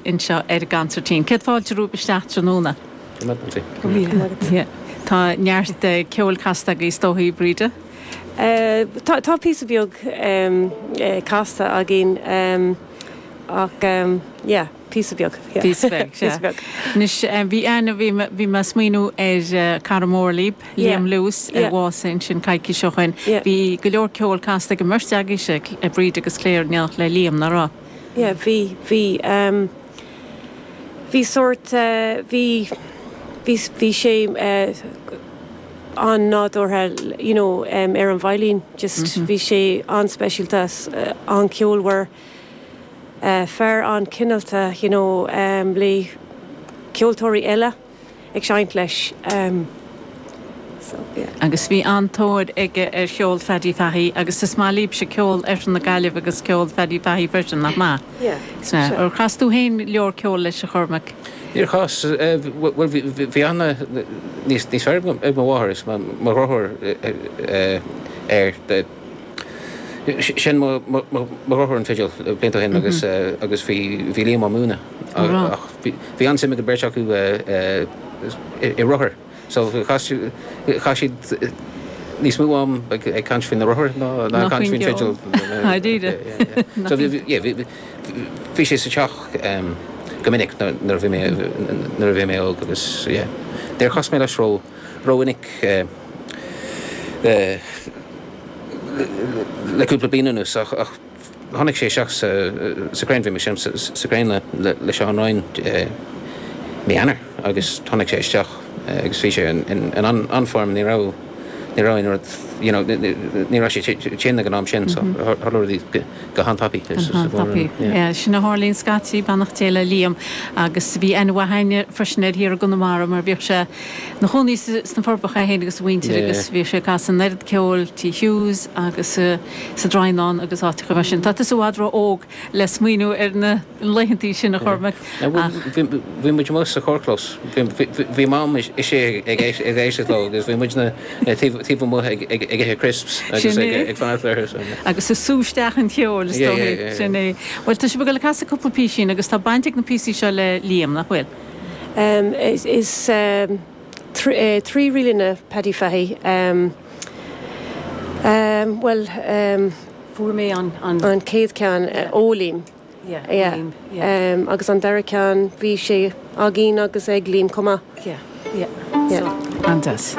anseo ar an gconsairtín. Céad fáilte romhaibh isteach tráthnóna. Tá neart ceoil casta agaibh is dóichí, Bríde? Tá píosa beag casta againn ach yeah, píosa beag. Píosa beag, sea. Píosa beag. Anois bhí Anne, bhí mé ag smaoineamh ar chara mór libh, Liam Lewis, a bhásaigh ansin coicís ó shoin. Bhí go leor ceoil casta ag an mbeirt agaibhse, Bríde agus Clare, in éineacht le Liam, nach raibh? yeah bhí, bhí ehm bhí sórt eh bhí, bhí, bhí sé eh an-nádúrtha you know em ar an veidhlín just bhí sé an-speisialta is an-cheolmhar eh fear an-chineálta you know em le ceoltóirí eile. ag seinnt leis so yeah. Agus bhí an-tóir aige ar cheol Phaddy Fahey agus is maith líbhse ceol Oirthear na Gaillimhe agus ceol Phaddy Fahey freisin, nach maith? Yeah, sure. Ar chas tú fhéin go leor ceol leis a Chormaic? Níor chas, bhuel bhí, bhí aithne níos, níos fearr ag mo mháthair is mo dheartháir air. Sheinn mo dheartháir an fidil blianta ó shin agus agus bhí bhí Liam á múineadh ach bhí an-suim ag an bheirt acu i rothair so chaith chaith siad níos mó am ag ag caint faoi na rothair ná ná ag caint faoin bhfidil. Go díreach. So bhí yeah bhí bhí sé sa teach go minic nuair a bhí mé nuair a bhí mé óg agus yeah níor chas mé leis ró ró mhinic eh le cúpla bliain anuas ach tháinig sé isteach sa Crane. Bhí mé ag seinnt sa Crane le Seán Ryan mí Eanáir agus tháinig sé isteach agus bhí sé in an-form. Ní raibh ní raibh aon rud you know ní raibh sé tinn ag an am sin so tharla rudaí go han-tapaidh. Sin a tharlaíonn scaití, beannacht Dé le Liam agus bhí aithne mhaith againn freisin air thiar i gConamara mar bhíodh sé ina chónaí sna Forbacha é féin agus a mhuintir agus bhíodh sé ag casadh an oiread ceoil Tigh Hughes agus sa Droighneán agus áiteacha mar sin. Tá tusa i bhfad ró óg le smaoineamh ar na laethantaí sin, a Chormaic, ach. Bhí muid amuigh sa charrchlós, bhí Mam istigh ag éisteacht leo agus bhí muidne taobh amuigh ag ithe crisps agus ag fanacht orthu. Agus ag sú isteach an cheoil is dóigh, sin é. Bhuel tá sibh ag dul ag casadh cúpla písín agus tá baint ag na píosaí seo le Liam, nach bhfuil? Is trí ríleanna Paddy Fahy. Bhuel. Fuair mé an. An céad ceann, ó Liam. Yeah, ó Liam, yeah. Agus an dara ceann, bhí sé againn agus ag Liam chomh maith. Yeah, yeah. Yeah. An-deas.